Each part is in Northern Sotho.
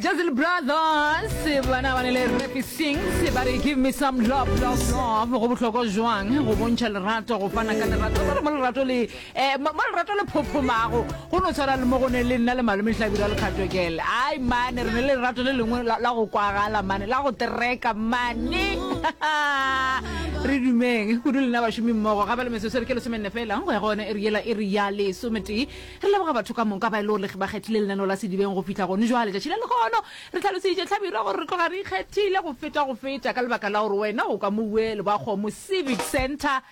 Jazil Brothers bana ba ne le Rafi Sings ba re give me some love love love go bohlokwa jwang go bontšha lerato go fana ka lerato ba re mo lerato le eh mo lerato le phophomago go no tshwana le mo go ne le nna le malome hlabira le kgatokele ai mane re ne le lerato le lengwe la go kwagala mane la go tereka mane re dumeng kudu lena bašomi mmogo gape le mesosere ke lesomenne fela go ya gone e re yela e re ya lesometee Re leboga batho ka moka ba e lego re ba kgethile lenaneo la Sedibeng go fihla gone jwale. Tšatši la lehono re hlaloseditše Hlabirwa gore re tloga re ikgethile go feta go feta ka lebaka la gore wena o ka mo bue Lebakgomo Civic Centre.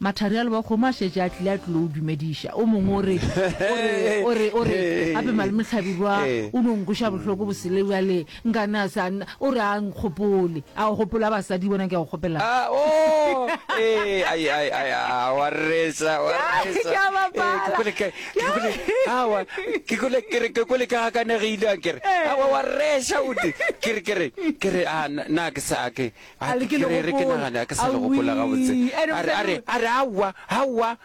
Mathari a Lebakgomo a šetše a tlile a tlilo o dumediša. O mongwe o re, o re, o re, o re, Gape Malome Hlabirwa o no nkweša bohloko bosele bjale. Nganase a nna, o re a nkgopole. A o gopola basadi bona ke a go kgopelang? A, oo, ee, ai, ai, ai, a, wa reetsa, wa Ke a- reetsa. ke a bapala. Ee, ke kwele ke- ke kwele- awa, ke kwele- ke re- ke kwele ke gakanegile a kere. Ee. Awa, wa reetsa o te. Ke re- ke re- ke re, a, na- na ke sa ke- a, A le ke ke le re- re ke gopola. nagane, a ke sa le gopola Awii, gabotse. ene A re- a re- mosadi a re, awa, awa,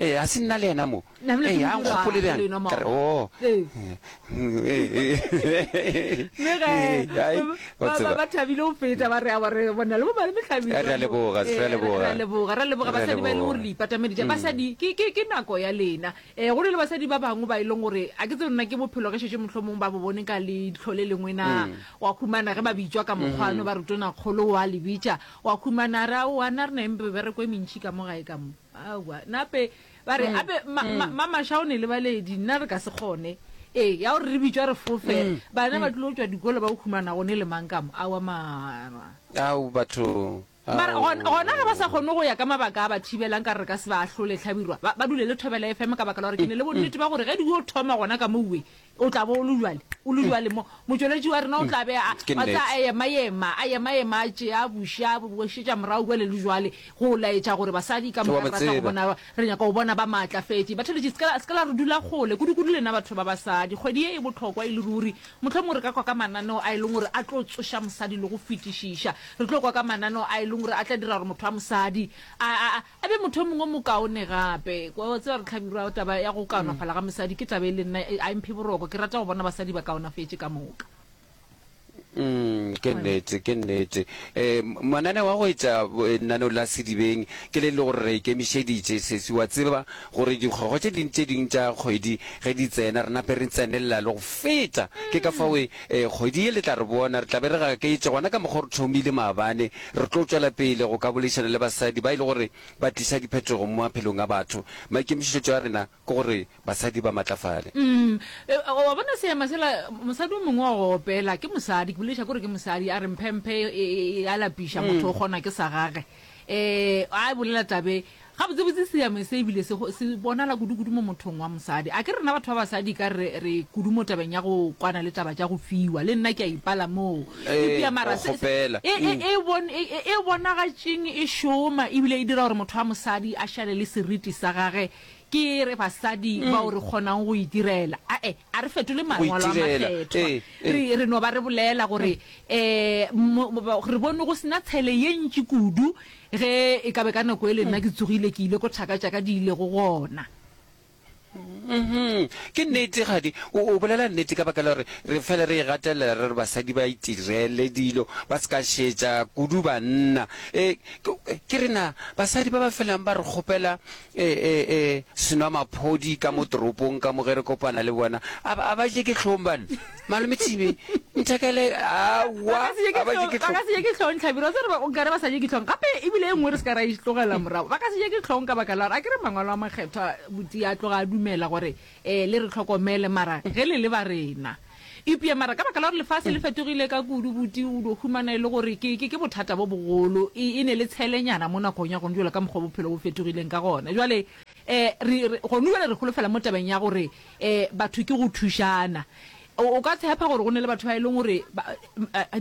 Ee, ga se nna le yena mo. Ee, a nkgopole bjang. Ka re, oo. Mme ge Ai, o ba- ba- tseba. ba thabile go feta ba re a ba re bona le bomane mehlabelo Re a leboga, re a Eh, leboga. re a leboga re a leboga Re a basadi ba e leng gore leboga. le ipatamedi ja basadi ke ke ke nako ya lena eh go ne le basadi ba bangwe ba e leng gore a ke tse nna ke bophelo ge šetše mohlomong ba bo bone ka leitlho le lengwe na wa khumana ge ba bitšwa ka mokgwano ba re tona kgolo wa le bitša wa khumana ra o ana re na le mebereko e mentši ka mo gae ka mo Aowa, nape ba re, ape Mamasha o ne le baledi, nna re ka se kgone. Ee, ya gore re bitšwa re fofe, bana ba tlilo tšwa dikolo ba humana gone le mang kamo, aowa mara. Ao, batho, ao. Mara gona, gona ge ba sa kgone go ya ka mabaka a ba thibelang, ka re re ka se ba ahlole, Hlabirwa, ba, ba dule le Thobela FM ka baka la gore ke ne le bonnete ba gore ge di yo thoma gona ka mo uwe, o tla bo o le bjale o le bjale mo motšweletši wa rena o tla be a Ke wa tseba, a nnete. ema-ema a ema-ema a tšea buša a bošetša morago bjale le bjale go laetša gore basadi ka Ke wa moka re ba batla go tseba. bona re nyaka go bona ba maatlafetše batheletši se ka la- se ka la re dula kgole kudu-kudu lena batho ba basadi kgwedi ye e bohlokwa e le ruri mohlomongwe re ka kwa ka mananeo a e leng gore a tlo tsoša mosadi le go fetišiša re tlo kwa ka mananeo a e leng gore a tla dira gore motho wa mosadi a, a, a A be motho yo mongwe o mokaone gape. Wa wa tseba re hlabirwa taba ya go kaonafala ga mosadi ke taba e le nna e a mphe boroko. Ke rata go bona basadi ba kaonafetše ka moka. Mm, ke nnete, ke nnete. Eh, m- mananeo a go etša bo- eh, lenaneo la Sedibeng ke le le gore re ikemišeditše sesi. Wa tseba gore dikgwego tše ding tše ding tša kgwedi ge di tsena re nape re tsenelela le go feta. Ke ka fao e Ee, kgwedi ye le tla re bona, re tla be re gaketše, gona ka mokgwa o re thomile maabane. Re tlo tšwela pele go ka boledišana le basadi ba e le gore ba tliša diphetogo mo maphelong a batho. Maikemišetšo a rena ke gore basadi ba matlafale. Umm, e, wa bona seema sela, mosadi o mongwe wa go opela, ke mosadi, ke bolediša ke gore ke mosadi, a re mphemphe e, e, e a lapiša, motho o kgonwa ke sa gage. Ee, a e bolela taba e. Gabotsebotse seame se e bile se, se bonala kudu-kudu mo mothong wa mosadi. A ke rena batho ba basadi e ka re re kudu mo tabeng ya go kwana le taba tša go fiwa. Le nna ke a ipala moo. Eupša Ee, mara o se, se, kgopela. e, e, e, bon, e, e, e bonagatšeng e šoma e bile e dira gore motho wa mosadi a šale le seriti sa gage. Ke re basadi bao re kgonang go itirela, ae, A re fetole Mangwalo a Makgethwa. Re, re no ba re bolela gore, um, re bone go se na tshele ye ntši kudu ge e ka be ka nako ele nna ke tsogile ke ile ko thaka tša ka di ilego gona. Ke nnete, kgadi, o, o bolela nnete ka baka la gore re fele re e gatelela, re re basadi ba itirele dilo, ba se ka šetša kudu banna. E, ke, ke re na, basadi ba ba felang ba re kgopela E, e, e, senwamaphodi ka mo toropong ka mo ge re kopana le bona. A, a ba je ke hlong bana. Malome Thibe, nthekele, aowa, a ba je ke hlong. Ba ka se je ke hlong, Tlhabiro, se re ba, o kare ba sa je ke hlong. Gape, e bile e nngwe re se ka ra e tlogela morago. Ba ka se je ke hlong ka baka la gore, a ke re Mangwalo a Makgethwa, Buti a tloga a dumela gore, Ee, le re hlokomele, mara ge le le ba rena. Eupša mara ka baka la gore lefase le fetogile ka kudu, buti o dio humana e le gore ke, ke, ke bothata bo bogolo. E, e ne le tshelenyana mo nakong ya gona jola ka mokgwa bophelo bo fetogileng ka gona. Jwale, eh, re, re, gona jwale re holofela mo tabeng ya gore, eh, batho ke go thušana. O ka tshepa gore go na le batho ba e leng gore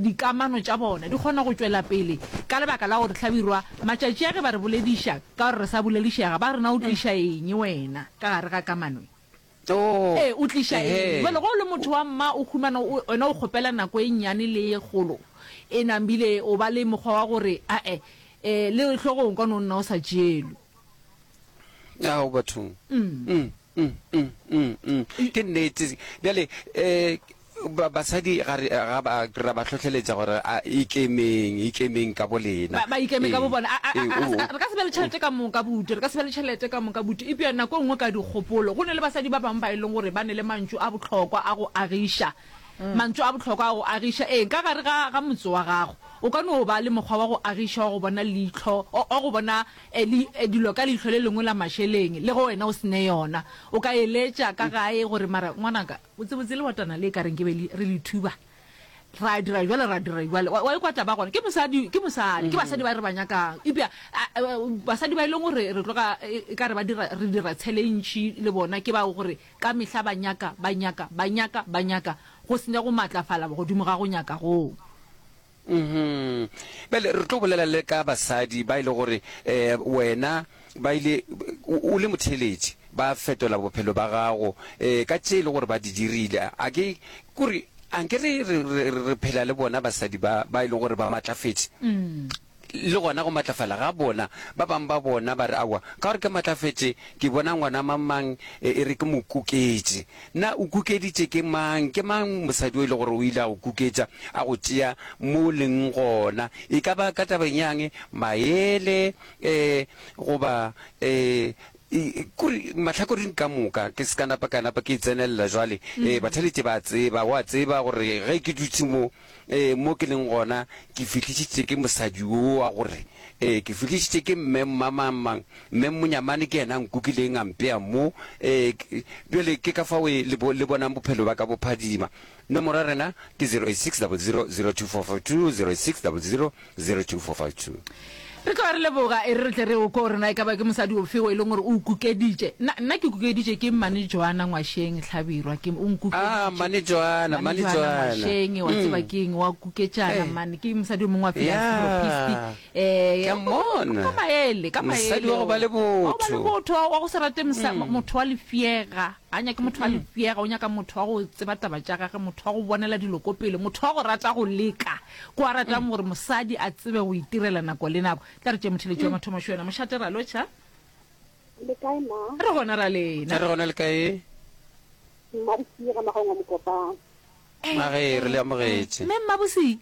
dikamano tša bona di kgona go tšwela pele ka lebaka la gore hlabirwa matšatši a ge ba re bolediša ka gore re sa boledišega ba re na o tliša eng wena ka gare ga kamano e? Ee, o tliša eng? Jale go o le motho wa mma o humana wena o kgopela nako e nnyane le e kgolo e nambile o ba le mokgwa wa gore ae le hlogong ka no nna o sa tšeelwe. Ao bathong. Mm, mm, mm, mm. ke nnete bjale um ba- basadi ga re- ga ba ra ba hlohleletša gore a ikemeng ikemeng ka bo lena ba ba ikeme ka bo Ee, bona A- a- ee, a- a- o- ska- re ka se be le tšhelete ka moka butu re ka se be le tšhelete ka moka butu epja nako e nngwe ka dikgopolo go ne le basadi ba bangwe ba e leng gore ba ne le mantšu a botlhokwa a go agiša mantšu a botlhokwa a go agiša ee ka gare ga ga motse wa gago o ka no ba le mokgwa wa go agiša wa go bona leitlho o- wa go bona Eli, dilo ka leihlo le lengwe la mašeleng, le ge wena o se ne yona. O ka eletša ka gae gore, Mara, ngwanaka, botsebotse lewatana le ka reng ke be le, re le thuba. Ra dira bjalo, ra dira bjalo. Wa, wa ikwa taba gona? Ke mosadi, ke mosadi. Ke basadi ba re ba nyakang. Eupša a, a, basadi ba e leng gore re tloga e, e ka re ba dira, re dira tshele e ntši le bona, ke bao gore ka mehla ba nyaka, ba nyaka, ba nyaka, ba nyaka, go se ne go maatlafala godimo ga go nyaka goo. Uhmm. Bjale re tlo bolela le ka basadi ba e le gore eh wena ba ile o le motheeletši ba fetola bophelo ba gago eh ka tše e le gore ba di dirile. A ke kore anke re re phela le bona basadi ba ba e le gore ba matlafetše? Le gona go matlafala ga bona. Ba bang ba bona ba re aowa ka gore ke matlafetše ke bona ngwana mang mang e re ke mo kuketše. Na o kukeditše ke mang? Ke mang mosadi o e le gore o ile a go kuketša, a go tšea mo o leng gona, e ka ba ka tabeng yang? Maele, ee, goba, ee, kore mahlakoring ka moka. Ke se ka napa ka napa ke e tsenelela jwale. Ee, bathaletše ba a tseba, o a tseba gore ge ke dutše mo. Ee, mo ke leng gona, ke fihlišitše ke mosadi wo wa gore, ee, ke fihlišitše ke mme mmamangmang, mme monyamane ke yena a nkukileng a mpea mo. Ee, bjale ke ka fao e, le, bo, le bonang bophelo bja ka bo phadima. Nomoro ya rena ke 086 00 02442, 086 00 02452. Re tloga re leboga, e re re tle re o kwe gore na e ka ba ke mosadi ofe o e leng gore o o kukeditše. Nna, nna ke kukeditše ke Mmane Joana Ngwasheng Hlabirwa, ke, o nkukeditše. Ah, Mmane Joana, Mmane Joana. Mmane Joana Ngwasheng, wa tseba ke eng, wa kuketšana, mmane. Ke mosadi o mongwe wa philanthropisti. Yeah. Eh, Ke a mmona. Ka maele, ka maele. Mosadi wa go ba le botho. Wa go ba le botho, wa go se rate mosadi, motho wa lefšega. A nyake motho a lefšega, o nyaka motho wa go tseba taba tša gage, motho wa go bonela dilo ko pele, motho wa go rata go leka, ko a ratang gore mosadi a tsebe go itirela nako le nako. Tla re tšee motheletši wa mathomo šo yena. Mošate ra lotšha. Le kae ma? Re gona ra lena. Re gona le kae? Mma Bosiga Magongwa Mokopane. Magee, re le amogetše. Mme Mma Bosiga.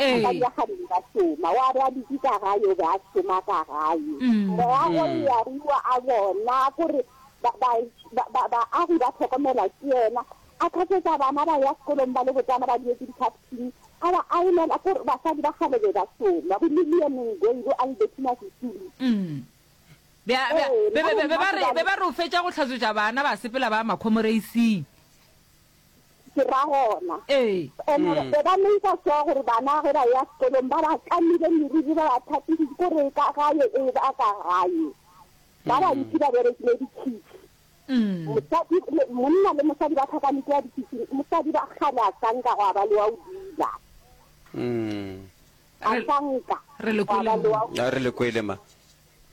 A ka dula kgadimo ka šoma. Wa be a dutše ka gae, o be a šoma ka gae. Moragwe Learua a bona gore ba, ba, ba, ba, baagi ba hlokomelwa ke yena. A khatsetsa bana ba ya sekolong ba le botsana ba dietše dikhaftini. A ba ailela gore basadi ba kgale be ba šoma, bo Lillian Ngoyi, bo Albertina Sisulu. Be, be, be, be, be, be ba re, be ba re o fetša go hlatswetša bana ba sepela ba ya makhomoreising. Ke ra gona. Ee. And-e Mm. be ba make-a sure gore bana ge ba ya sekolong ba ba kamile meriri, ba ba tlhapile, ko re ka gae e ba ka gae. Ba bantši ba berekile dikhitšhi. Mm. Mosadi, le- monna le mosadi ba tlhakanetse ya dikhitšhing. Mosadi ba kgale a sa nka gwa ba le wa o dula. Mm. A Re- sa nka. re le Gwa ba kwele le wa o- a re le kwele ma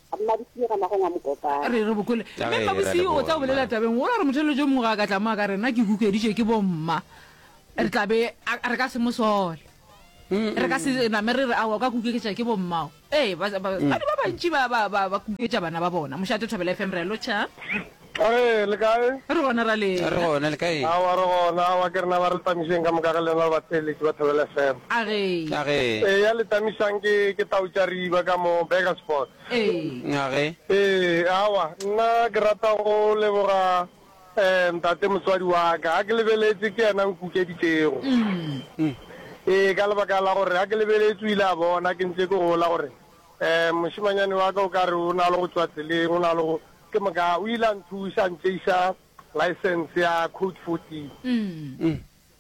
A mma di senyega magong a mokopana. Re re bokole. Ka Mme ge e ra Mmabosio o leboga, tla bolela mma. tabeng gola gore motheletšo o mongwe ga a ka tla mo a ka re, Nna ke hukeditšwe ke bomma. Re tla be a, re ka se mo sole. Re ka se name re re, Aowa, o ka kukeketša ke bommao. Ee, ba, ba, batswadi ba bantši ba, ba, ba, ba kuketša bana ba bona. Mošate Thobela FM, re a lotšha. Ka ge le kae? Re gona ra lena. Re gona le kae? Aowa re gona, aowa ke rena ba re tamišeng ka moka ga lena le batheeletši ba Thobela FM. A ge? A ge? Eya le tamišang ke, ke tau tša riba ka mo Burgersport. Ee. A ge? Ee, aowa nna ke rata go leboga eh ntate motswadi wa ka, ga ke lebeletše ke yena nkukeditšego. Umm. Ee, ka lebaka la gore ga ke lebeletše o ile a bona ke ntše ke gola gore eh mošemanyane wa ka o ka re o na le go tšwa tseleng, o na le go, Ke moka o ile a nthuša a ntšeiša license ya code 14.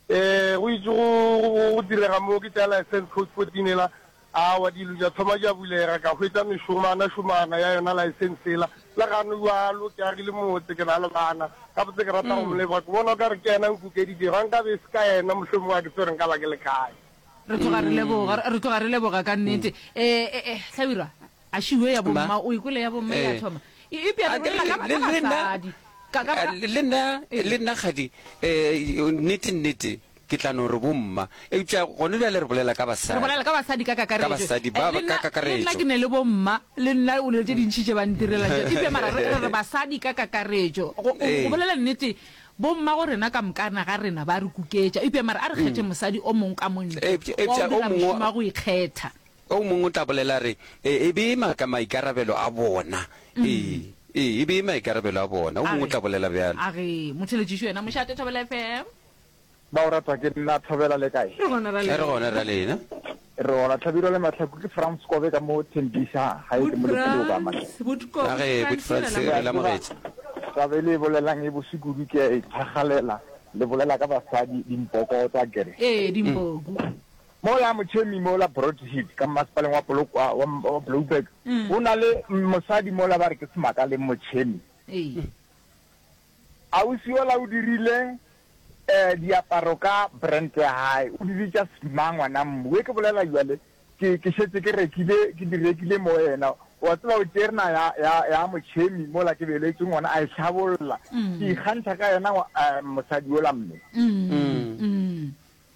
E, go itše go, go, go direga moo ke tšea license code 14 ela, awa dilo tša thoma tša bulega, ka hwetša mešomana šomana ya yona license ela. Le gano bjalo ke agile motse, ke na le bana, gabotse ke rata go mo leboga, ke bona o ka re ke yena a nkukeditšego, ga nkabe e se ka yena mohlomongwe ga ke tsebe gore nka ba ke le kae. Re tloga re leboga, re tloga re leboga ka nnete. E, e, e, Hlabirwa, Ašiwe ya bomma, Mma. o e kwele ya bomma e a Ee. thoma. E, eupša re Anke, bolela ka, le- ka le nna- basadi. Ka, ka, ka. le nna, le nna kgadi, um, nnete, nnete, ke tla no re bomma, eupša gone bjale re bolela ka Re basadi. bolela ka basadi ka kakaretšo. Ka basadi ba- Eh, le ka nna- kakaretšo. Le nna ke ne le bomma, le nna o ne le tše dintši tše ba ntirela tše. Eupša mara re, re re basadi ka kakaretšo. Go, go, Ee. go bolela nnete, bomma go rena ka mokana ga rena ba re kuketša. Eupša mara a re kgethe mosadi o mongwe ka mo ntle, Eupša- wa eupša go o dira mongwe- mošomo wa go ikgetha. O mongwe o tla bolela a re, E, e be e maka maikarabelo a bona. Ee, ee, e be e maikarabelo a bona, o mongwe o tla bolela bjalo. A re, Motheeletšiši wena, mošate, Thobela FM. Ba o rata ke nna, Thobela, le kae? Re gona ra lena. Re gona ra lena. Re gona, Tlhabirwa le Mahlaku, ke Frans Kobe ka mo Tembisa, gae ke mo Letsilo ka Mahlaku. Boot Frans, Boot Kobe. A re, Boot Frans, re le amogetše. Taba e le e bolelang e bose kudu, ke a e thakgalela, le bolela ka basadi, dimpoko tsa, ke re. Ee, dimpoku. Mola motšhemi mola Broadhead ka mmasepaleng wa Polokwa wa wa Blouberg go na le m- mosadi mola ba re ke semaka le motšhemi. Ee. Ausi yola o dirile eh, diaparo ka brand ya hae, o dirile tša Sma ngwana mmu. We ke bolela jwale ke, ke šetse ke rekile, ke di rekile mo yena. Wa tseba o tšerna ya, ya, ya motšhemi mola ke beletšwe ngwana a e hlabolla. Ke ikgantšha ka yena ngwa- eh, mosadi yola mme. Mm. Mm.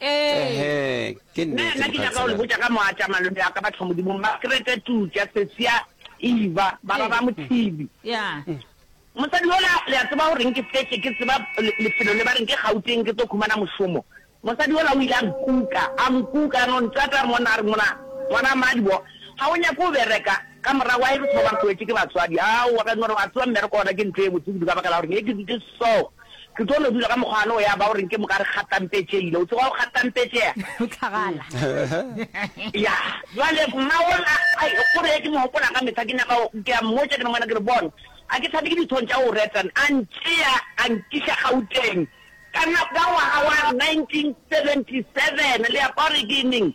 Ehe, ke Nna nnete, nna ke nyaka go le mokhanselara. botša ka moatša malome wa ka Bathomodimo Makrete Tutša Sesia Eva ba ba ba Mothibi. Yeah. Mosadi yola le a tseba goreng ke fetše ke tseba le- lefelo le ba reng ke Gauteng ke tlo khumana mošomo. Mosadi yola o ile a nkuka, a nkuka a no ntata monna a re ngwana, ngwana mmadi bo ga o nyake go bereka ka morago ga e re se ba ba re tloetše ke batswadi. Aowa ka no re wa tseba mmereko ona ke ntho e botse kudu ka baka la gore ne ke dutše so. Ke tlo no dula ka mokgwa no ya ba o reng ke moka re kgatampetšeile. O tseba go kgatampetšea? O tlhagala. Ya. Jwale mma o la, ai, o re, ke mo hopola ka mehla, ke nyaka go, ke a mmotša, ke re, Ngwana, ke re, bona, a ke thabe ke dithong tša go retan. A ntšea, a nkiša Gauteng. Ka na, ka ngwaga wa 1977, le ya kwa gore ke neng.